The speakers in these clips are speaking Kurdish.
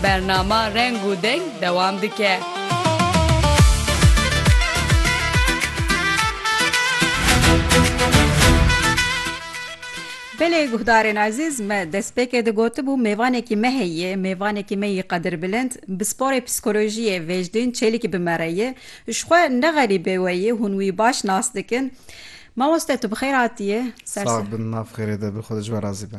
Bernama Reng û Deng dewam dike. Belê guhdarên ezîz, me destpêkê de gotibû mêvanekî me heye, mêvanekî me yê qedirbilind, bi sporê psîkolojiyê Vêjdîn Çêlikî bi me re ye. Ji xwe ne xerîbê we ye, hûn wî baş nas dikin. Mamoste tu bi xêr hatiyê. Sax bin nav xêrê de bi xwe de ji we razî be.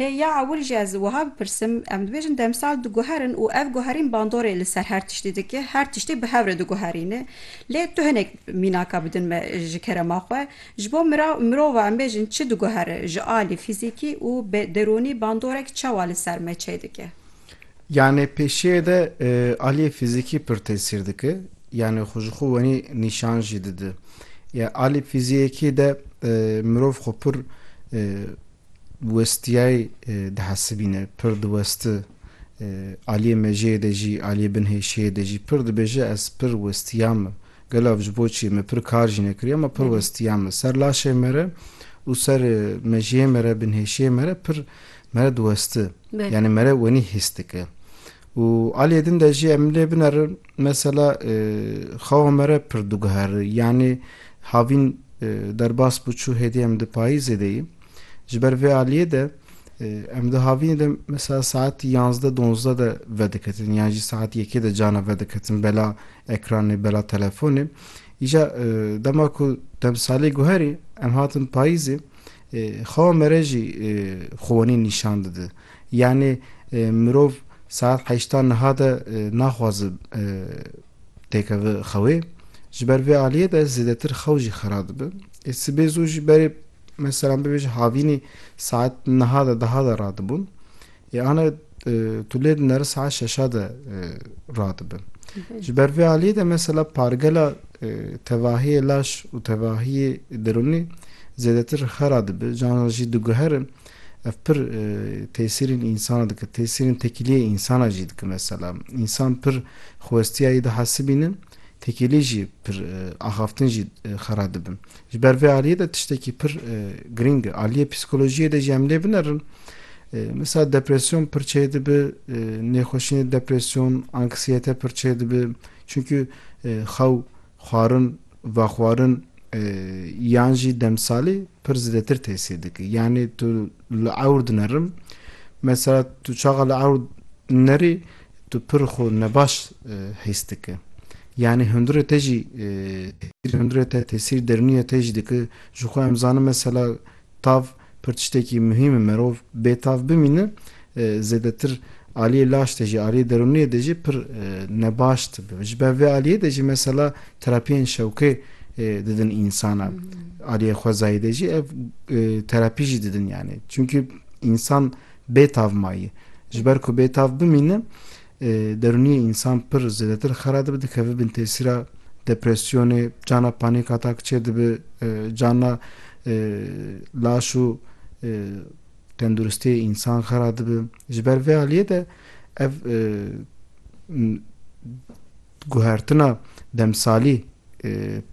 Lê ya ewil jî ez wiha bipirsim, em dibêjin demsal diguherin û ev guherîn bandorê li ser her tiştî dike, her tiştî bi hev re diguherîne. Lê tu hinek mînaka bidin me ji kerema xwe. Ji bo mirav, mirova em bêjin çi diguhere ji alî fîzîkî û bi derûnî bandorek çawa li ser me çê dike? Yanî pêşiyê de aliyê fîzîkî pir tesîr dike, yanî xwe ji xwe wenî nîşan jî dide. Ya alî fîziyekî de mirov xwe pir, westiyayê dihesibîne, pir diwesti, aliyê mejiyê de jî, aliyê bin hêşiyê de jî pir dibêje ez pir westiya me. Gelo ev ji bo çi? Me pir kar jî nekiriye ma pir westiya me. Ser laşê me re û ser mejiyê me re, bin hêşiyê me re pir me re diwesti. Yanî me re wenî hîs dike. Û aliyê din de jî em lê binerin mesela xewa me re pir diguhere. Yanî havîn derbas bû çû hêdî em di payîzê de yîn. Ji ber vê aliyê de em di havînê de mesela saet yazdeh donzdeh de vediketin yan jî saet yekê de carna vediketin bela ekranê bela telefonê. Îja dema ku demsalê guherî em hatin payîzê Xewa me re jî xwenî nîşan dide. Yanî mirov saet heşta niha de naxwaze têkeve xewê. Ji ber vê aliyê de zêdetir xew jî xera dibe. Ê sibê zû jî berê meselan bibêje havînî saet niha de diha de radibûn. Yane tu lê di nere saet şeşa de radibin. Ji ber vê aliyê de mesela pargela tevahiyê laş û tevahiyê derûnî zêdetir xera dibi, canan jî diguherin ev pir tesîrên însana dike, tesîrên tekîliyê însana jî dike mesela. Însan pir xwestiya yê dihesibînin, tekîlî jî pir axaftin jî xera dibin. Ji ber vê aliyê de tiştekî pir girîng e. Aliyê psîkolojiyê de jî em lê binerin. Misal depresyon pir çê dibi, nêxweşînê depresyon, anksiyete pir çê dibi. Çunkî xew, xwarin, vexwarin yan jî demsalî pir zêdetir tesîr dike. Yanî tu li ewr dinerim. Mesela tu çaxa li ewr nerî Tu pir xwe nebaş hîs dike. Yanî hundirê te jî tesîr hundirê te tesîr derûniyê te jî dike. Ji xwe em zanim mesela tav pir tiştekî muhîm e. Merov bê tav bimîne zêdetir aliyê laş de jî aliyê derûniyê de jî pir nebaş dibe. Ji ber vê aliyê de jî mesela terapiyên şewqê didin însana. Aliyê xwezayî de jî ev terapî jî didin yanî. Çimkî însan Bêtav mayî. Ji ber ku bêtav bimîne, derûniyê însan pir zêdetir xera dibe, dikeve bin tesîra depresyonê, cana panîk atak çê dibe, cana laş û tenduristiyê însan xera dibe. Ji ber vê aliyê de ev guhertina demsalî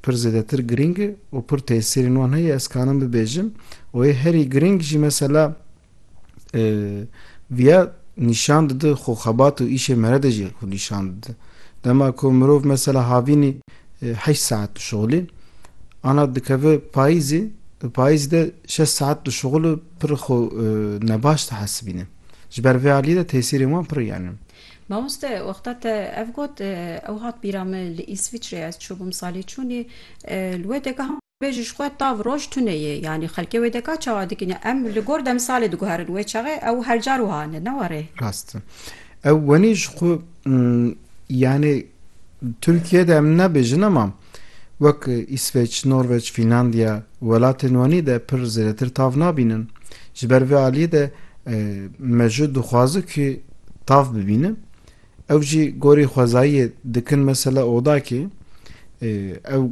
pir zêdetir girîng e û pir tesîrên wan heye. Ez karim bibêjim û yê herî girîng jî mesela, Viya nîşan dide xwe xebat û îşê mere de jî xwe nîşan dide. Dema ku mirov mesela havînî heşt saet dişuxilî ana dikeve payîzê di payîzê de şeş saet dişuxil û pir xwe nebaş dihesibîne. Ji ber vê aliyê de tesîrên wan pir yan in. Mamoste wexta te ev got ew hat bîra min li Îsviçreyê ez çûbûm salê çûnê li wê de Wê ji xwe tav roj tune yê. Yanî xelkê wê de ka çawa dikine? Em li gor demsalê diguherin. Wê çaxê ew her car wiha ne, ne were. Rast e. Ew wenî ji xwe yanî Tirkiye de em nabêjin ema wek Îsveç, Norveç, Fînlandiya welatên wenî de pir zêdetir tav nabînin. Ji ber vê aliyê de me jû dixwaze ku tav bibîne. Ew jî gorî xwezayiyê dikin mesela odakê ew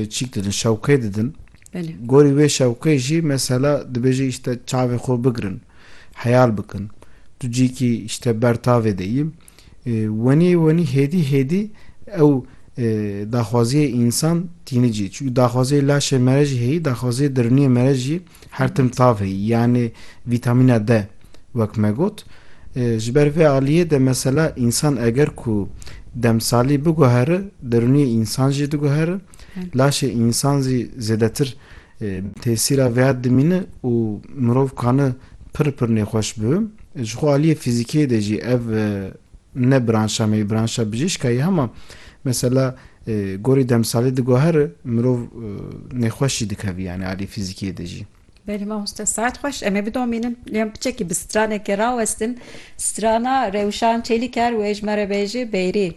çîk didin şewqê didin. Gorî wê şewqê jî mesela dibêje îşte çavê xwe bigirin heyal bikin. Tu cîkî îşte ber tavê de î. Wenî wenî hêdî hêdî ew daxwaziyê însan tîni cî. Çunke daxwaziyê laşê mere jî heyî, daxwaziyê diriniyê mere jî her tim tavê yanê vîtamîna D wek me got. Ji ber vê aliyê de mesela însan eger ku demsalî biguhere derûniyê însan jî diguhere, laşê însan zî zêdetir tesîra vêya dimîne û mirov kane pir pir nêxweş bibe. Ji xwe aliyê fîzîkiyê de jî ev ne branşa me yê branşa bijîşka yê hema mesela Gorî demsalê diguher mirov nêxweş jî dikevî yanî alî fîzîkiyê de jî. Belê mamoste saet xweş em ê bidomînin lê em piçekî bi stranekê rawestin strana rewşan çêlî ker wê ji me re bêjî bêrî.